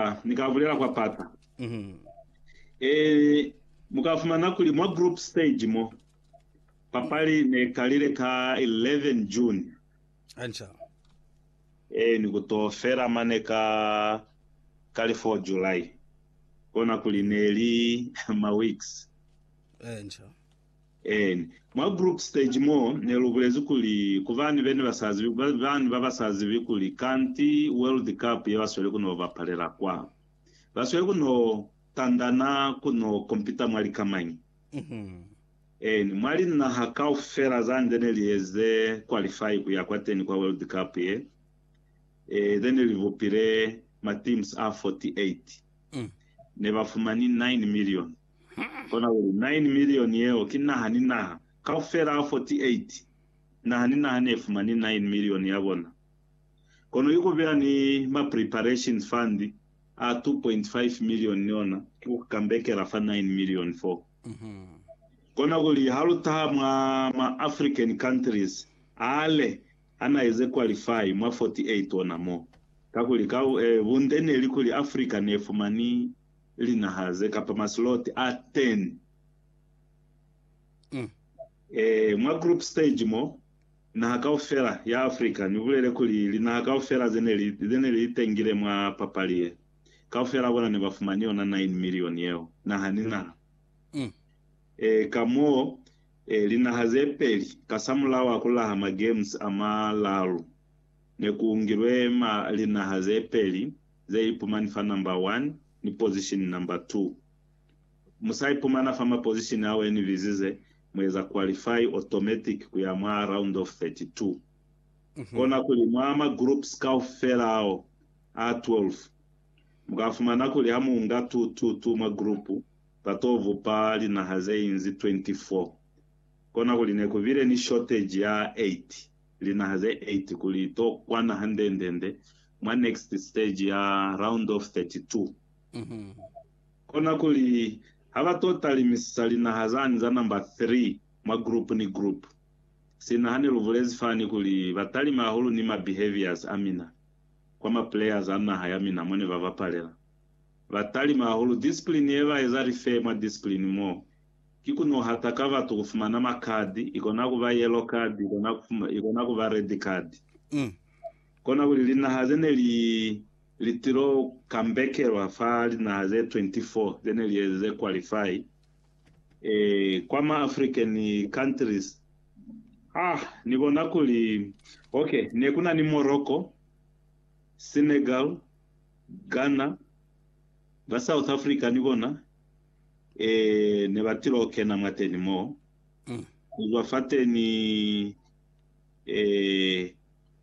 Ah, ni ka bulela kwa pata. Eh, mu ka fumana kuli mwa group stage mo, papali ne kalile ka 11 June. Anca. Eh, ni ku to fela mane ka, ka li 4 July. Kona kuli ne li ma weeks. Anca. En. Mwa group stage mo ne lu bulezi kuli, ku bani bene ba sa zibi, ba bani ba ba sa zibi kuli kanti World Cup ye ba sweli ku no bapalela kwa, ba sweli ku no tandana ku no kompita mwa lika mañi? En. Mwa linaha kaufela za nde ne li eze qualify ku ya kwateni kwa World Cup ye, e, ze ne li bupile ma teams a 48, ne ba fumani 9 milioni. Kona kuli, Nine milioni yeo ki naha ni naha kaufela 48, naha ni naha nefumani nine milioni yabona. Kono ki kubeya ni ma preparation fund a 2.5 milioni ni ona ki kukambekela fa nine milioni foo. Kona kuli, halutaha mwa ma African countries ale anaeze qualify mwa 48 ona moo. Kakuli, ka bunde neli kuli Africa nefumani. linaha ze kapa masloti a 10 ee, mwa group stage mo, naha kaufela ya Afrika, ni bulele kuli linaha kaufela ze ne li, ze ne li itengile mwa papali ye, kaufela bona ne ba fumani yona 9 milioni yeo, naha ni naha. Ee, ka moo, ee, linaha ze peli, kasamulaho a ku laha ma Games a malalu, ne ku ungilwe ma, linaha ze peli, ze ipumani fa number one ni position number two. Mu sa ipumana fa ma position ao e ni bizize, mu eza qualify automatic ku ya mwa round of 32. Kona kuli mwa ma groups kaufela ao a 12, mu ka fumana kuli ha mu nga tu tu tu mwa group, ba to bupa linaha ze inzi 24. Kona kuli ne ku bile ni shortage ya 8. linaha ze 8 kuli to kwana handendende mwa next stage ya round of 32. Kona kuli ha ba to talimisisa linaha zani za number 3 mwa group ni group, sina hane lu bulezi fani kuli ba talime hahulu ni ma behaviors a mina kwa ma players a naha ya mina mone ba bapalela. Ba talime hahulu discipline ye ba eza refer mwa discipline mo Ki ku nuhata ka batu ku fumana ma card, ikona ku ba yellow card, ikona ku, ikona ku ba red card. Kona kuli linaha ze ne li, li tilo kambekelwa fa linaha ze 24 ze ne li eze ze qualify, eh, kwa ma African countries. Ah, ni bona kuli, ok, ne ku na ni Morocco, Senegal, Ghana, ba South Africa ni bona. Ee, ne ba til'o kena mwateni mo, kuzwa fateni. Ee,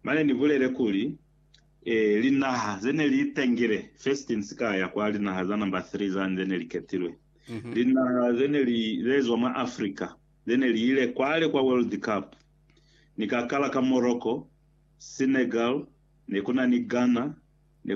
mane ni bulele kuli, Ee, linaha ze ne li itengile, first in sikaya kwa linaha za number three zani ze ne li ketilwe, linaha ze ne li, ze zwa mwa Africa, ze ne li ile kwale kwa World Cup. Ni ka kala ka Morocco, Senegal, ne ku na ni Ghana, ne ku.